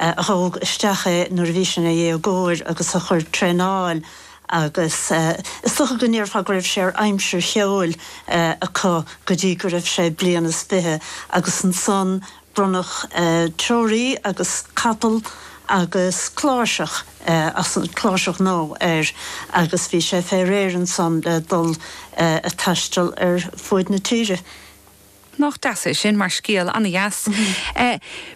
a thóg isteach é nuair a bhí sé ina dhéagóir agus a chuir traenáil agus is dócha go ndéarfá go raibh sé ar aimsir cheoil acu go dtí go raibh sé bliain is fiche agus ansan bronnadh treoraí agus capall agus cláirseach, cláirseach nua air agus bhí sé fé réir ansan le dul ag taisteal ar fuaid na tíre. Nach deas é sin mar scéal, an-deas.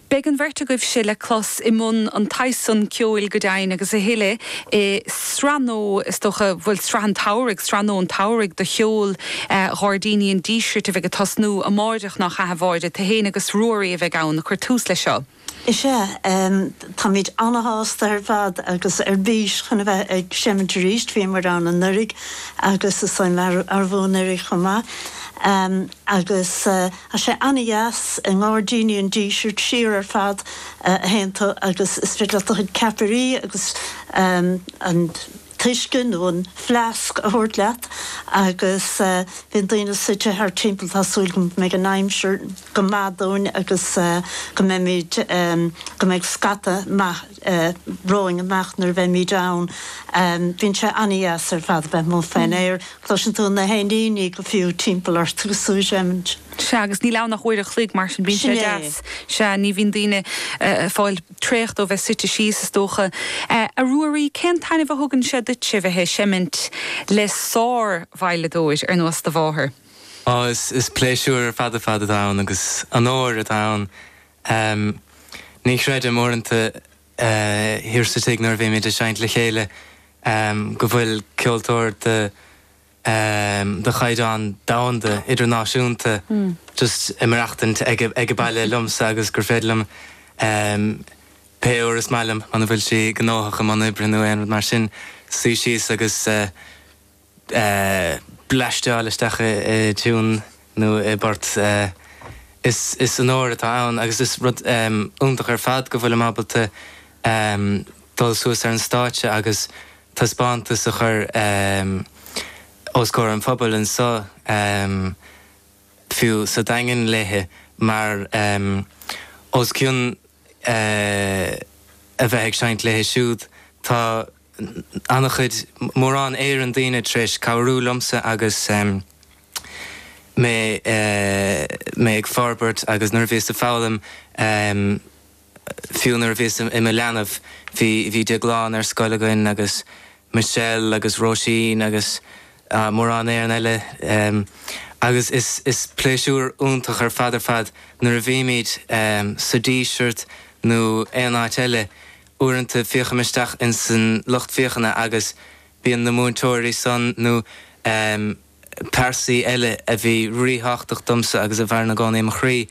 Beidh an bheirt agaibhse le clos i mbun an tsaghas san ceoil go deimhin agus a thuille i sraith nua is dócha, bhuel sraith an tsamhraidh, sraith nua an tsamhraidh de cheol Gháirdíní an Dísirt a bheidh ag tosnú amáireach, nach ea a Mháire? Tú héin agus Ruairí a bheidh ann ag cur tús leis seo. Is ea, táimid ana-shásta ar fad agus ar bís chun a bheith ag seimint arís. Bhí muid ann anuraidh agus is dóigh liom arú anuraidh chomh maith. Agus tá sé ana-dheas i nGairdíní an Dísirt, siar ar fad a théann tú agus is féidir leat do chuid ceapairí agus an. t-uisce nó an fleasc a thabhairt leat agus bíonn daoine suite thart timpeall tá súil agam go mbeidh an aimsir go maith dúinn agus go mbeimid go mbeidh scata maith romhainn amáireach nuair a bheimid ann bíonn sé an-deas ar fad a bheith amuigh faoin aer cloiseann tú na héiníní go fiú timpeall ort agus tú ag seimint. Sea agus níl ann ach uair a chloig mar sin bíonn sé deas. Sea ní bhíonn daoine ag fáil. traochta ó bheith suite síos, is dócha. A Ruairí, cén taitneamh a thugann sé duitse bheith ag seimint le sár-veidhleadóir ar nós do mháthar? Ó, is pléisiúr ar fad ar fad atá ann agus onóir atá ann. Ní chreidim, uaireanta thiar sa tigh nuair a bhímid ag seinnt le chéile, go bhfuil ceoltóir de ehm de chaighdeán domhanda, idirnáisiúnta just ag maireachtaint ag ag baile liomsa agus gur féidir liom ehm pé uair is maith liom muna bhfuil sí gnóthach i mbun oibre nó aon rud mar sin suí síos agus eh eh bleaisteáil isteach i i dtiún nó i bport eh is is onóir atá ann agus is rud ehm iontach ar fad go bhfuilim ábalta ehm dul suas ar an stáitse agus taispeántas a chur os comhair an phobail anseo fiú sa Daingean léi mar os cionn a bheith ag seinnt léi siúd tá ana-chuid, mórán Éireann daoine tar éis cabhrú liomsa agus mé ag forbairt agus nuair a bhíos ag foghlaim. Fiú nuair a bhíos i mo leanbh bhí bhí Déaglán ar scoil againn agus Michelle agus Róisín agus mórán Éireann eile agus is is pléisiúr iontach ar fad ar fad nuair a bhímid sa Díseart nó aon áit eile uaireanta féachaim isteach in san lucht féachana agus bíonn na múinteoirí san nó pearsaí eile a bhí rí-thábhachtach domsa agus a mhaireann i gcónaí i mo chroí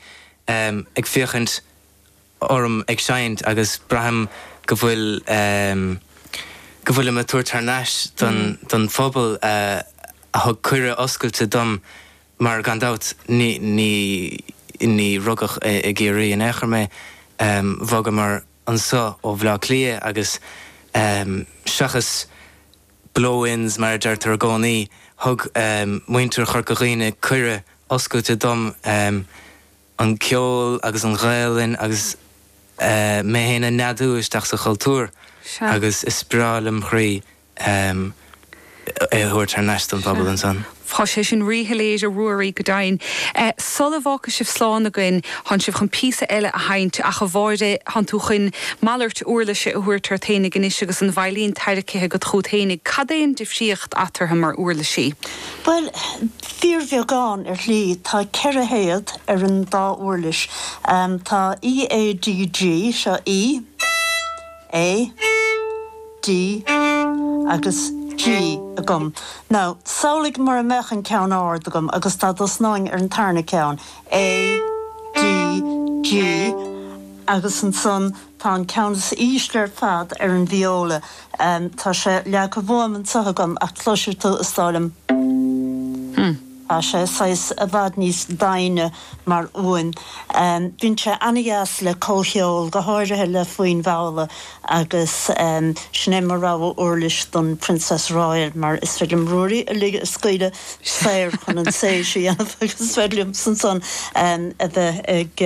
ag féachaint orm ag seinnt agus braithim go bhfuil, em, go bhfuilim ag tabhairt thar n-ais don, don phobal a, a thug cuireadh oscailte dom mar gan dabht ní, ní, ní rugadh i, i gCiarraí in aon chor mé, em, bhogamar anseo ó Bhleá Cliath agus, em, seachas blow-ins mar a deirtear i gcónaí, thug, em, muintir Chorca Dhuibhne cuireadh oscailte dom, em, an ceol agus an Ghaelainn agus mé féin a neadú isteach sa chultúr agus is breá lem' chroí é a thabhairt thar n-ais don phobal ansan. Tá sé sin rí-shoiléir a Ruairí, go deimhin. Sul a bhfágfaidh sibh slán againn, thánn sibh chun píosa eile a sheinnt, ach a Mháire, thánn tú chun malairt úirlise a thabhairt ort fhéinig anois agus an veidhlín tairricthe agat chughat fhéinig, cad é an difríocht eatarthu mar úirlisí? Bhuel, Fíorbheagán, ar shlí. Tá ceithre théad ar an dá uirlis. Tá E, A, D, G. Seo E, A, D agus G agam. Now, samhlaigh mura mbeadh an ceann ard agam agus dá dtosnóinn ar an tarna ceann, A, D, G, agus ansan Tá an ceann is ísle ar fad ar an vióla. Tá sé leagtha uaim anseo agam ach cloisfidh tú, is dóigh liom. Tá sé saghas i bhfad níos doimhne mar fhuaim. Bíonn sé an-deas le comhcheol, go háirithe le foinn mhalla agus sin é mo rogha uirlis don Princess Royal mar is féidir liom Ruairí a lig a scaoileadh saor chun an séis a dhéanamh agus is féidir liomsa ansan a bheith ag